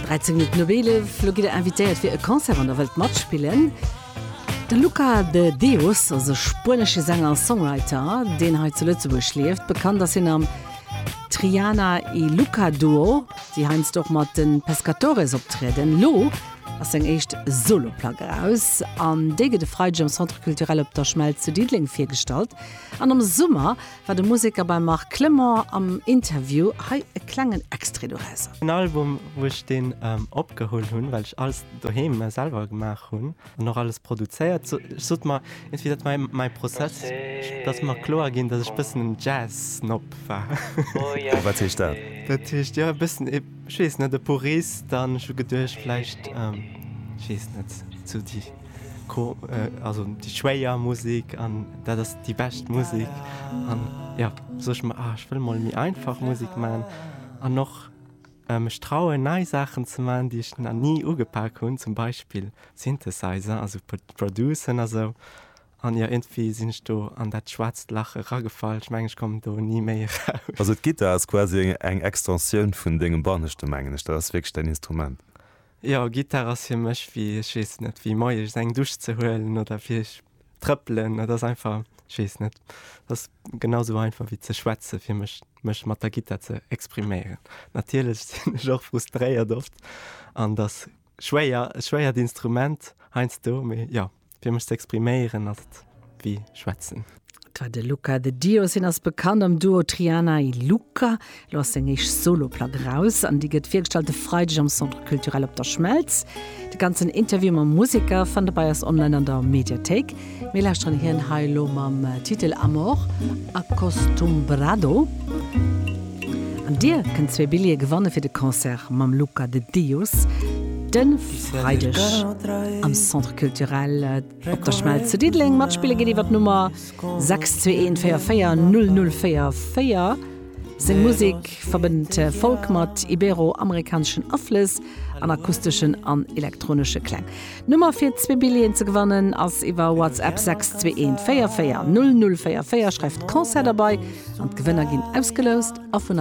13 Minutten op 11, lo gitt der invitéiert fir e Concert, wann der wëllt matspillen. De Luca de Deus ass e spuenesche Sänger a Songwriter, deen hei zu Lëtzebuerg lieft. Bekannt ass hien am Triana y Luca Duo, déi heiansdo och mat de Pescatores optrieden. Lo ass seng éischt Solo-Plack eraus an déi gëtt e Freideg am Centre Culturel Op der Schmelz zu Diddeleng virgestallt. An am Summer war de Museker beim Marc Clement am Interview. Hei e klengen Extrait dorausser. En Album, wou ech deen opgeholl hunn, well ech alles doheem selwer gemaach hunn an och alles produzéiert. Ech sot mer iergendwéi, dat war mäi Prozess, dass mer kloer ginn, dass ech e bëssen en Jazz-Snob war. A wat heescht dat? Dat heescht, jo, e bëssen e, ech weess net, e Purist an ech hu geduecht, vläicht, ech weess net, sou déi. also déi schwéier Musik an dat ass déi bescht Musik an ja sou ech mer ah ech wëll mol méi einfach Musik man an noch mech trauen nei Saachen ze man déi ech na ni ugepak hunn zum Beispill Synthesizer also Producen a sou an jo iergendwéi sinn ech do an dat schwaarzt Lach eragefall, ech mengen ech kommen do ni méi eraus. Also d'Gittar ass quasi eng Extensioun vun dengem Banneschte mengen ech, dat ass wierklech däin Instrument? Jo, Gittar ass fir mech wéi, ech weess net, wéi moies eng Dusch ze huelen oder fir ech trëppelen. Dat ass einfach, ech weess net, dat ass genau sou einfach wéi ze schwätze fir mech, mech mat der Gittar ze expriméieren. Natierlech sinn ech och frustréiert oft an et ass schwéier, e schwéiert Instrument heiansdo, mee jo. Fir mech ze expriméieren ass et wéi schwätzen. Dat war de Luca de Dios. Hien ass bekannt am Duo Triana y Luca. Elo ass seng éischt Solo-Plack eraus an déi gëtt virgestallt de Freideg am Centre Culturel Op der Schmelz. De ganzen Interview mam Museker fannt der bei eis online an der Mediathéik. Mir lauschteren hien hei elo mam Titel Amor Acostumbrado. An dir kënnt zwee Billjeeë gewanne fir de Concert mam Luca de Dius de Freideg am Centre Culturel Op der Schmelz zu Diddeleng. Matspille geet iwwer d'Nummer 621440044. Seng Musek verbënnt Folk mat ibero-amerikaneschen Aflëss an akusteschen an elektronesche Kläng. D'Nummer fir zwee Billjeeën ze gewannen ass iwwer WhatsApp 621 44 0044. Schreift Concert derbei an d'Gewënner ginn ausgeloust a vun.